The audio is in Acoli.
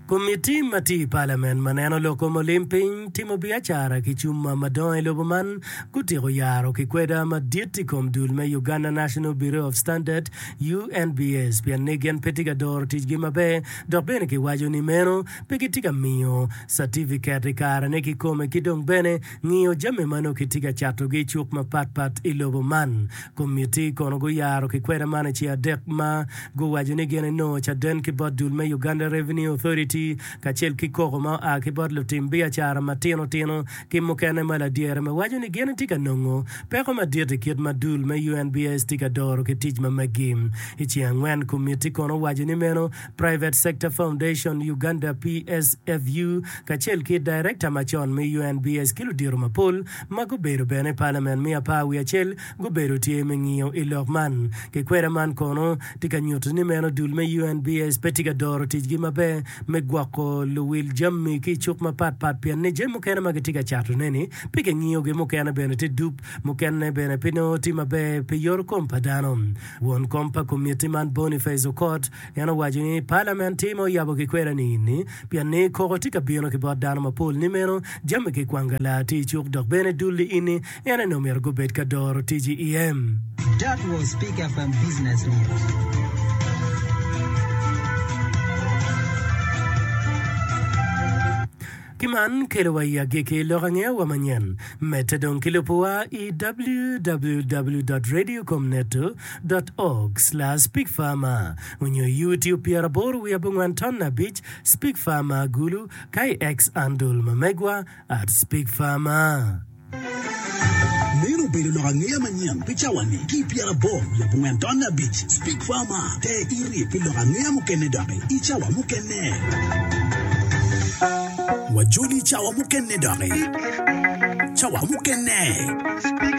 Komitti ma tye i Palamen ma neno loko mulim piny timo biacara ki cuma madongo i lobo man gutyeko yaro kikweda madit i kom dul me Uganda National Bureau of Standard, UNBS, pien ni gin pe tye ka doro ticgi maber dok bene kiwaco ni meno pe gitye ka miyo catifiket i karene kikome ki dong bene ngiyo jami ma nongo kitye ka catogi i cuk mapatpat i lobo man. Komitti kono guyaro kikwena man i ci adek ma guwaco ni gin enongo caden ki bot dul me Uganda Revenue Authority kacel ki koko ma oa ki bot lutim biacara matino tino ki mukene ma ladyere me waco ni gin etye ka nongo peko madit i kit ma dul me UNBS tye ka doro ki tic ma meggi. I ci angwen komitti kono owaco ni meno Private Sector Foundation Uganda, PSFU, kacel ki Director macon me UNBS ki ludito mapol ma gubedo bene palamen me apar wiye acel gubedo tye me ngiyo i lok man. Kikweda man kono tye ka nyuto ni meno dul me UNBS pe tye ka doro ticgi maber me gwoko luwil jami ki i cuk mapat pat pien ni jami mukene ma gitye ka catoneni pe kingiyogi, mukene bene tye dup, mukene bene pe nongo tye maber pi yorokom pa dano. Won kom pa komitti man Boniface Okot, En owaco ni, Palament tye ma oyabo kikwera-ni ini, pien ni koko tye ka bino ki bot dano mapol ni meno, jami ki kwanga laa tye icuk dok bene dul-li ini, en aye ni omyero gubed ka doro tic iem. That was Speak FM Business News. Ki man kelo wa i agikki lok angeya wa manyen. Medde dong ki lubo wa i www dot radio com net dot org slash pig farmer onyo i youtube pyera aboro wiye abongwan ton abic spig farmer gulu ka i X andul ma megwa at spig farmer. Meno obedo lok angeya manyen pi cawa-ni. Ki i pyeraboro labongo tonne abic, Speak Far More te iri pi lok angeya mukene doki i cawa mukene. Wajoli i cawa mukene doki. Cawa mukene.